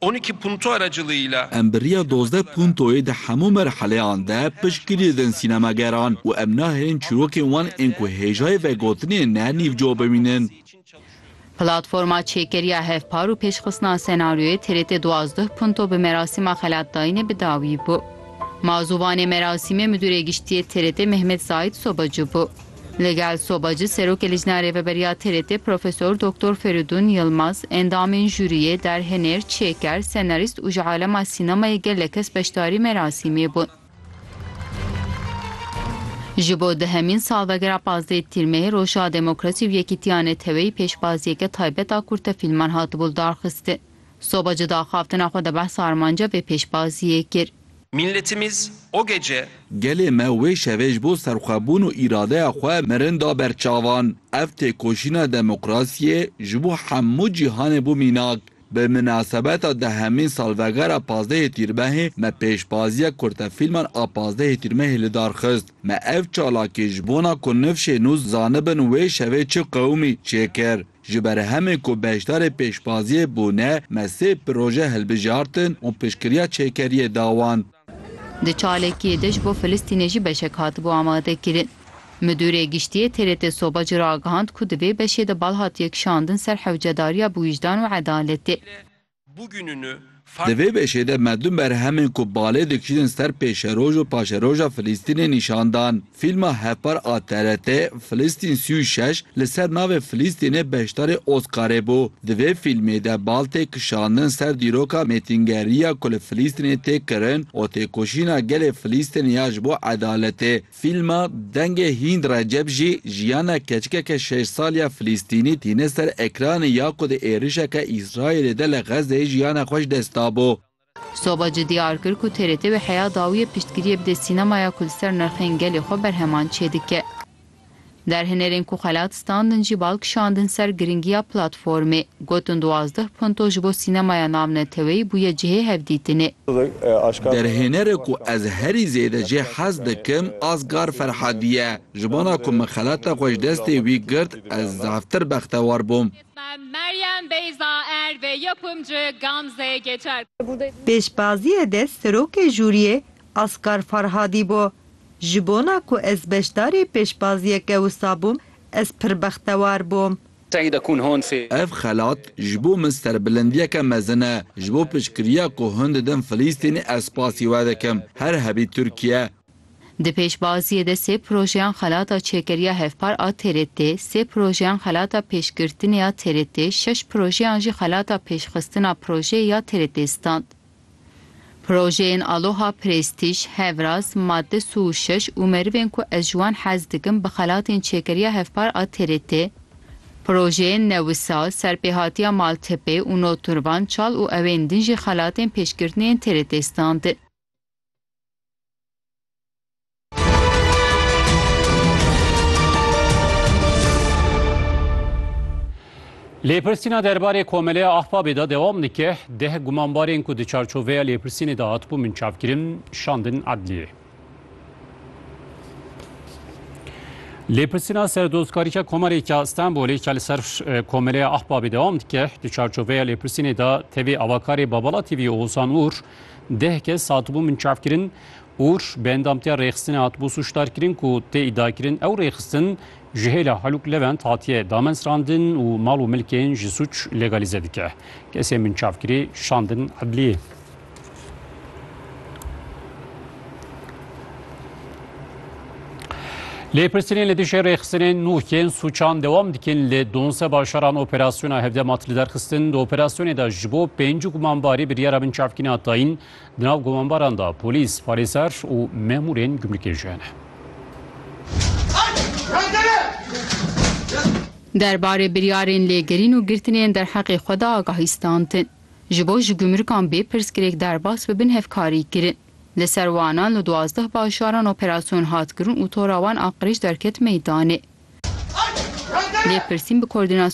Oniki Punto aracılığıyla. Em bi riya dozdeh puntoyê di hemû merheleyan de piştgirî didin sînemageran û em nahêlin çîrokên wan ên ku hêjayê vegotinê ne nîvco bimînin. Platforma Çêkeriya Hevpar û Pêşxistina Senaryoyê TRT duwazdeh punto bi merasîma xelatdayînê bi dawî bû. Mazûvanê merasîmê Midûrê Giştî yê TRT Mehmet Zahît Sobacı bû. Li gel sobacî Serokê Lijna Rêveberiya TRT'ê Profesor Doktor Ferîdûn Yilmaz, endamên jûriyê, derhenêr, çêker, senarîst û ji alema sînemayê gelek kes beşdarî merasîmê bûn. Ji bo dehemîn salvegera pazdeh Tîr Meh Roja Demokrasî û Yekîtiya Neteweyî pêşbaziyeke taybet a kurtefîlman hatibû lidarxistin. Soba cida axaftina xwe di behsa armanca vê pêşbaziyê kir. Milletimiz o gece. Gelê me wê şevê ji bo serxwebûn û îradeya xwe mirin da ber çavan. Ev têkoşîna demokrasiyê ji bo hemû cîhanê bû mînak. Bi minasebeta dehemîn salvegera pazdehê Tîrmehê me pêşbaziya kurtefîlman a pazdehê Tîrmehê li dar xist. Me ev çalakî ji bona ku nifşê nû zanibin wê şevê çi qewimî, çêkir. Ji ber hemê ku beşdarê pêşbaziyê bûne me sê proje hilbijartin û piştgiriya çêkeriyê da wan. Di çalekiyê de ji bo Filistînê jî beşek hatibû amadekirin. Midûrê Giştiyê TRT Soba ji ragihand ku di vê beşê de bal hatiye kişandin ser hewcedariya biwîjdan û edaletê. Di vê beşê de me du merhemên ku balê dikişînin ser pêşeroj û paşeroja Filîstînê nîşan dan. Fîlma hevpar a TRT'ê, Filistin sî û şeş, li ser navê Filîstînê beşdarê Oscarê bû. Di vê fîlmê de bal tê kişandin ser dîroka mêtingeriya ku li Filîstînê tê kirin û têkoşîna gelê Filîstînê ya ji bo edaletê. Fîlma Dengê Hînd Recep jî jiyana keçikeke şeş sal ya Filîstînî tîne ser ekranê ya ku di êrişeke Îsraîlê de li Xezzeyê jiyana xwe ji dest dabû. Soba jî diyar kir ku TRT wê heya dawiye piştgiriyê bide sînemaya ku li ser nirxên gelê xwe berheman çêdike. Derhenerên ku xelat standin jî bal kişandin ser girîngiya platformê. Gotin duwazdeh punto ji bo sînemaya navneteweyî bûye cihê hevdîtinê. Derhênere ku ez herî zêde jê hez dikim Asghar Ferhadî ye. Ji bona ku min xelata xwe ji destê wî girt ez zaftir bextewar bûm. Pêşbaziyê de serokê jûriyê Asghar Farhadî bû. Ji bona ku ez beşdarê pêşbaziyeke wisa bûm, ez pir bextewar bûm. Seyda Kûn Honfê. Ev xelat ji bo min serbilindiyeke mezin e. Ji bo piştgiriya ku hûn didin Filîstînê ez spasî we dikim. Her hebî Tirkiye. Di pêşbaziyê de sê projeyan xelata çêkeriya hevpar a TRT, sê projeyan xelata pêşgirtinê ya TRT, şeş projeyan jî xelata pêşxistina projeyê ya TRT stand. Projeyên Aloha Prestîj, Hevraz, Madde su û şeş û Merivên ku ez ji wan hez dikim bi xelatên Çêkeriya Hevpar a TRT, Projeyên Newisa, Serpêhatiya Maltepe û Notturvan çal û ewên din jî xelatên pêşkirtinê yên TRT standin. Lêpirsîna derbarê Komeleya Ahbabê de dewam dike. Deh gumanbarên ku di çarçoveya lêpirsînê de hatibû minçavkirin, şandin edliyê. Lêpirsîna serdozkarîka Komarêka Stenbolê ke li ser Komeleya Ahbabê dewam dike, di çarçoveya lêpirsînê de tevî avakarê Babala TV Oğuzhan Uğur deh kes hatibû minçavkirin Ûr, bi endamtiya rêxistinê hatibû sûcdarkirin ku tê îdiakirin ew rêxistin ji hêla Halûk Levent hatiye damezrandin û mal û milkên ji sûc legalîze dike. Kesên binçavkirî şandin edliyê. Lêpirsînên li dijî rêxistinên nû yên sûçan dewam dikin li donze bajaran operasyona hevdema tiliderxistin di operasyonê de ji bo pêncî gumanbarî biryara binçavkîna tayîn Di nav gumanbaran de polîs, parêzer û memûrên gumrikê jî hene. Derbarê biryarên lêgerîn û girtinên derheqê xwe de agahî standin. Ji bo ji gumrikan bê pirsgirêk derbas bibin hevkarî kirin. Li ser wanan li duwazdeh bajaran operasyon hat kirin û tora wan a qirêj derket meydanê. Lêpirsîn bi